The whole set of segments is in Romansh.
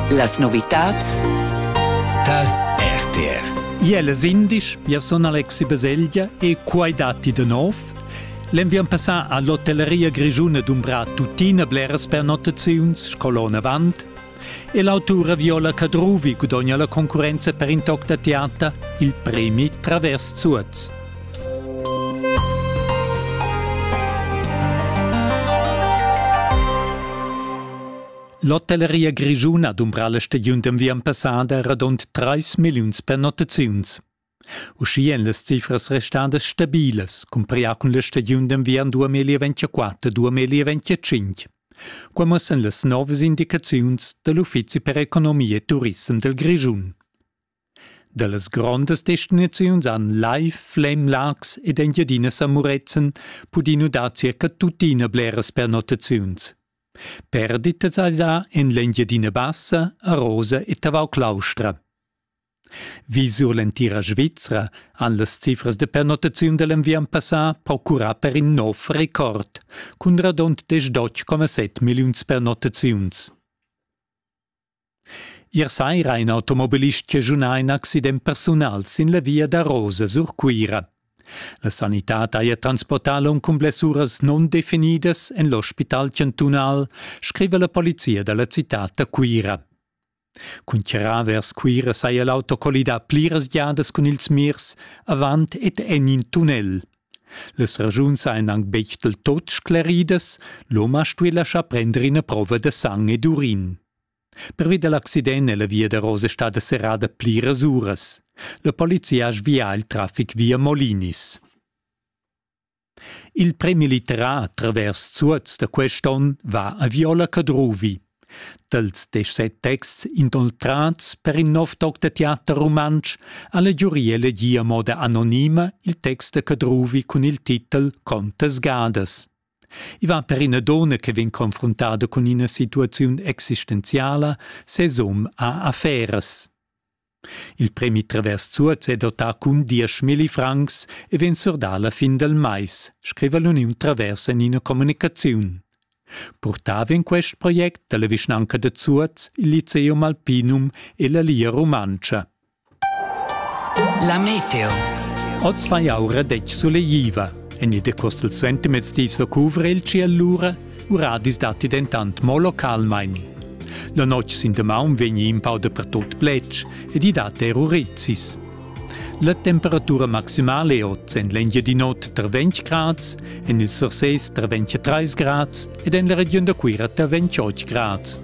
Las novitads tar RTR. Iel es indisch, io sun Alexi Baselgia e quai datti de nov. L'enviern passà a l'hotelleria grischuna dumbrà tuttina bleras pernottaziuns scolon avant e l'autura Viola Cadruvi gudogna la concurrenza per in toc da teater il premi Travers Zuoz. L'hotelleria grischuna dumbra la stagiun d'enviern passada radund 3 milliuns pernottaziuns. Uschia èn las cifras restadas stabilas, cumprià cun la stagiun d'enviern 2024-2025. Qua mussan las novas indicaziuns da l'Uffizi per economia e turissem del Grischun. Dallas grondas destinaziuns han Lai, Flem, Laax ed Engiadina San Murezzan pudì nudar circa tuttina bleras pernottaziuns. Perditas esa en l'Engiadina Bassa, Arosa e Tavau Claustra. Vi sur l'entira Svizra han las cifras de pernottaziun da l'enviern passà procurà per in nov record, cun radund 18,7 milliuns pernottaziuns. Ier saira ha in automobilist chaschunà in accident persunal sin la via da Rosa sur Cuira. La sanitad haja transportà l'um cun blessuras nundefinidas en l'ospital chantunal, scriva la polizia da la citad da Cuira. Cun charrar vers Cuira saja l'auto collidà pliras giadas cun ils mirs avant ed en in tunnel. Las raschuns ein aunc betg del tot scleridas, l'hom ha stuì laschar prender ina prova da sang ed urin. Pervi dal accident è la via da Rose stada serrada pliras uras. La polizia ha svià il traffic via Molinis. Il premilitär travers Zuoz da quest onn va a Viola Cadruvi. Dals deschset texts inoltrads per in nov toc da teater rumantsch ha la giuria elegì a moda anonima il text da Cadruvi cun il titel Contas gadas. I va per ina donna che vegn confruntada cun ina situaziun existenziala, ses um ha afferas. Il premi Travers Zuoz è dotà cun dieschmilli francs e vegn surdà alla fin del mais, scriva l'Uniun Travers en ina communicaziun. Purtà vegn quest project dalla vischnanca de Zuoz, il Liceum Alpinum e la Lia Rumantscha. La meteo. Oz fa jau radetg suleiva. En il decossel suentermezdi so cuvra il ci allura Uradis datti dentant mo localmain. La notg sin damaun vegni in pau dapertut pletg ed i dat er urizis. La temperatura maximale è oz en l'Engiadinot tra 20 grads, en il Surses tra 23 grads ed en la regiun da Cuira tra 28 grads.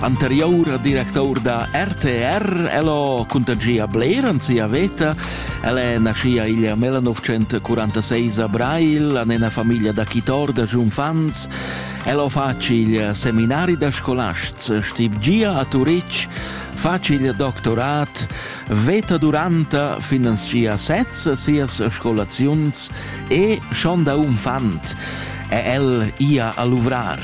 Anterior director da RTR, el ho contagia bler an sia veta. El è naschia igl 1946 a Brail, an ena famiglia da chitor da giunfants. El ho fac il seminari da scolasts, stib gia a Turitg, fac il doctorat, veta duranta finanzia sez sias scolaziuns e schon da unfant è el ia a luvrar.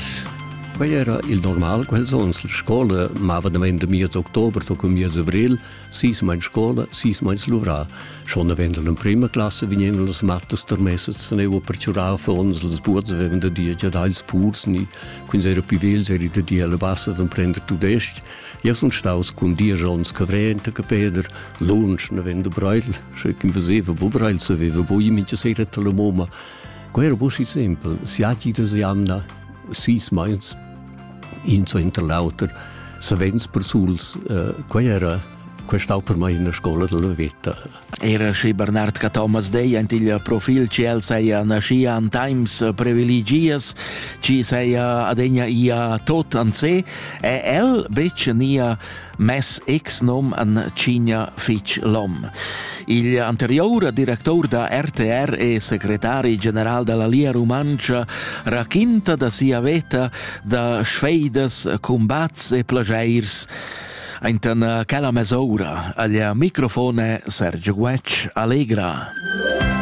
Quei era il normal quels onns. La scola mava damein da miez october toc miez avril, sis mein scola, sis mein luvrà. Schon avendo l'emprima classe vegnevan las mattas termessas teneva per ciurar fons, las buots avevan da dir già dagls purs ni quins era più vels eri da dir alla bassa d'emprender tudesc. Ja sun staus cun dieci ons cavrente che Peder, lunsch ne vende Breil, sche kim veseva bo Breil saveva bo i mincha sera la moma. Quei era bo si simpel, siati da jamna sis meins in suenter l'auter savens persuls uh, quei era quei stau per mai in scola della veta era schi Bernard Cathomas dei ant il profil ci el seia naschia an times privilegias ci seia adegna ia tot an se e el bec nia Mes ex-nom an Cigna fitg lom. Il anteriour director da RTR e secretari general della Lia Rumantscha raquinta da sia veta da sfeidas, combats e plagiairs Aintan quella mesoura agl microfone Sergio Guetg allegra.